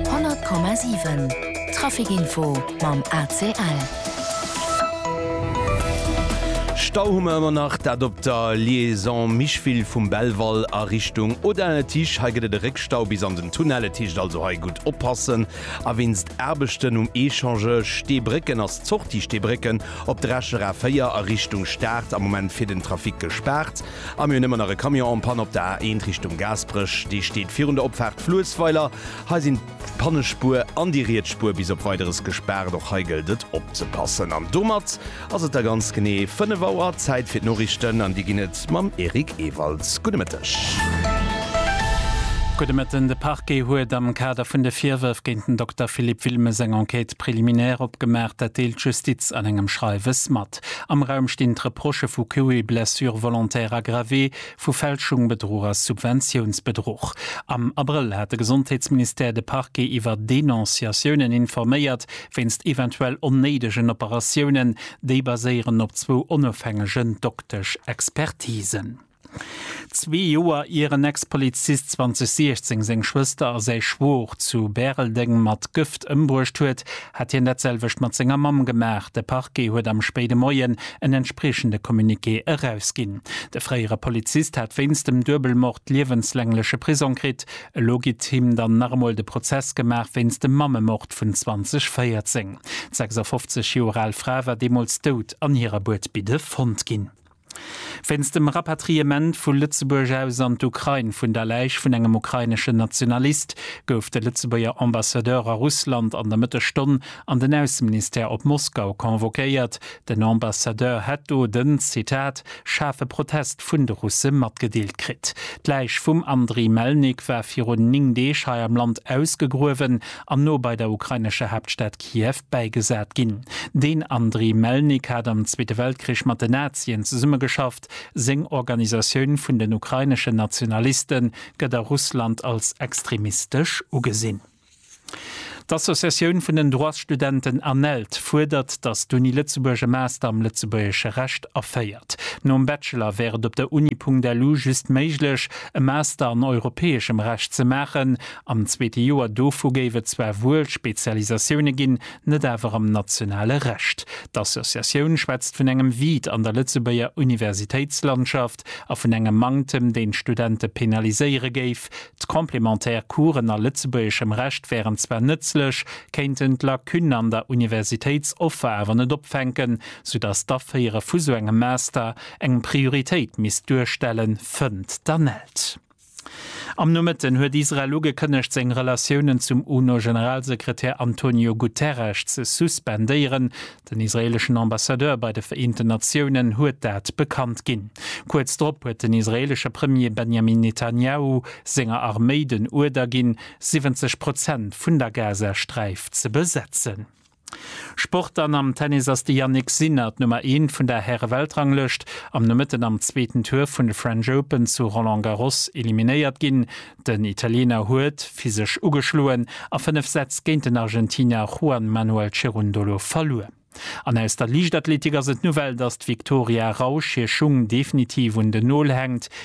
100,7 Traficinfo mam ACL. Stau hu mer ëmmer nach, dat op der Liaison Micheville vum Belval a Richtung Audun-le-Tiche. Hei gëtt et e Réckstau bis an den Tunnel-le-Tiche, also hei gutt oppassen. A wéinst Aarbechten um Echange Steebrécken ass d'Sortie Steebrécken op der Escher A4 a Richtung Start am Moment fir den Trafic gespaart. A mir hunn ëmmer nach e Camion en panne op der A 1 Richtung Gaasperech. Dee steet virun der Opfaart Fluessweiler. Hei sinn d'Pannespuer an déi riets Spuer bis op Weideres gespaart. Och hei gëllt et opzepassen. An domat ass et da ganz genee 5 Auer. Zäit fir d'Noriichten an déi ginn et mam Eric Ewalds. Gudde Mëtteg. Gudde Mëtten. De Parquet huet am Kader vun de Virwërf géint den Dokter Philippe Wilmes eng Enquête préliminaire opgemaach. Dat deelt d'Justiz an engem Schreiwes mat. Enquête. Am Raum stinn d'Reprochë vu Coup et blessure volontaire aggravé, vu Fälschung, Bedruch a Subventiounsbedruch. Am Abrëll hat de Gesondheetsministère de Parquet iwwer Denonciatiounen informéiert wéinst eventuell onnéidegen Operatiounen. Déi baséieren op zwou onofhängegen Doktesch-Expertisen. Zwee Joer ier en Ex-Polizist 2016 seng Schwëster a säi Schwor zu Bäreldeng mat Gëft ëmbruecht huet, hat hien dat selwecht mat senger Mamm gemaach. De Parquet huet am spéide Moien en entspriechende Communiqué erausginn. De fréiere Polizist hat wéinst dem Duebelmord liewenslängleche Prisong kritt. Elo gitt him dann nach emol de Prozess gemaach wéinst dem Mammemord vun 2014. D'sechsafofzeg Joer al Fra war deemools dout an hirer Buedbidde fonnt ginn. Wéinst dem Rapatriement vu Lëtzebuerg aus an d'Ukrain vun der Läich vun engem ukraineschen Nationalist gouf de Lëtzebuerger Ambassadeur a Russland an der Mëttesstonn an den Ausseministère op Moskau convoquéiert. Den Ambassadeur hätt do den, Zitat, schaarfe Protest vun de Russe matgedeelt kritt. D'Läich vum Andriy Melnik war virun 9 Deeg hei am Land ausgegruewen an no bei der ukrainescher Haaptstad Kiew bäigesat ginn. Den Andriy Melnik hat am Zweete Weltkrich mat den Nazien zesummegeschafft. Seng Organisatioun vun den ukraineschen Nationaliste gëtt a Russland als extremistesch ugesinn. D'Associatioun vun den Droitsstudenten ANELD fuerdert, datt d'Uni Lëtzebuerg e Master am lëtzebuergesche Recht aféiert. Nom Bachelor wär et op der Uni-punkt-lu just méiglech, e Master an europäeschem Recht ze maachen. Am zweete Joer dovu géif et zwar wuel Spezialisatioune ginn, net awer am nationale Recht. D'Associatioun schwätzt vun engem Vide an der Lëtzebuerger Universitéitslandschaft a vun engem Manktem, deen d'Studente penaliséiere géif. D'complémentaire Coursen a lëtzebuergeschem Recht wären zwar nëtzlech, kéinten d'Lacunne an der Universitéitsoffer awer net opfänken, soudass d'Aféiere vu sou engem Master eng Prioritéit misst duerstellen, fënnt d'Anne Elt. Am Nomëtten huet Israel ugekënnegt, seng Relatiounen zum UNO-Generalsekretär Antonio Guterres ze suspendéieren. Den israeeleschen Ambassadeur bei de Vereenten Natiounen huet dat bekannt ginn. Kuerz drop huet den israeelesche Premier Benjamin Netanjahu senger Arméi den Uerder ginn, 70 Prozent vun der Gazasträif ze besetzen. Sport an am Tennis ass de Jannik Sinner d'Nummer Eent vun der Häre-Weltranglëscht am Nomëtten am zweeten Tour vun de French Open zu Roland Garros eliminéiert ginn. Den Italiener huet physesch ugeschloen a fënnef Sätz géint den Argentinier Juan Manuel Cerundolo verluer. An aus der Liichtathletik ass et d'Nouvelle, dass d'Victoria Rausch hir Schung definitiv un den Nol hänkt.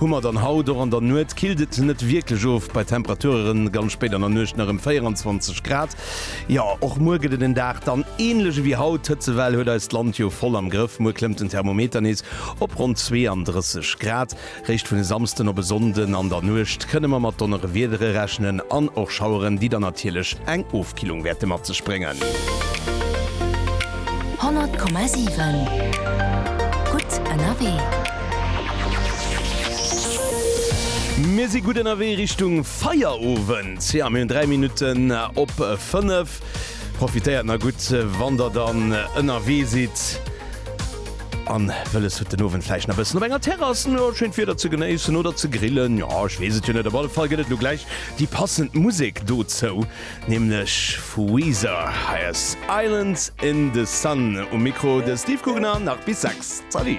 Hu mer dann haut och an der Nuet. Killt et net wierklech of bei Temperaturen ganz spéit an der Nuecht nach ëm 24 Grad. Jo, och muer gëtt et en Dag dann ähnlech ewéi haut. D'Hëtzewell huet eist Land jo voll am Grëff. Muer klëmmt den Thermometer nees op ronn 32 Grad. Réischt vun e Samsden op e Sonnden an der Nuecht kënne mer mat Donnerewiedere rechnen an och Schaueren, déi dann natierlech eng Killung wäerte mat sech bréngen. 100,7 gutt ënnerwee. Mir si gutt ënnerwee Richtung Feierowend. Jo, mir hunn 3 Minutten op 5. Profitéiert nach gutt, wann der dann ënnerwee sidd an wëlles hutt, den Owend vläicht nach e bëssen op enger Terrass schéint Wieder ze genéissen oder ze grillen. Jo, ech weess et jo net. Op alle Fall gëtt et elo gläich déi passend Musek dozou. Nämlech vu Weezer. Hei ass Island in the Sun. Um Mikro de Steve Gugner, nach bis 6. Salut!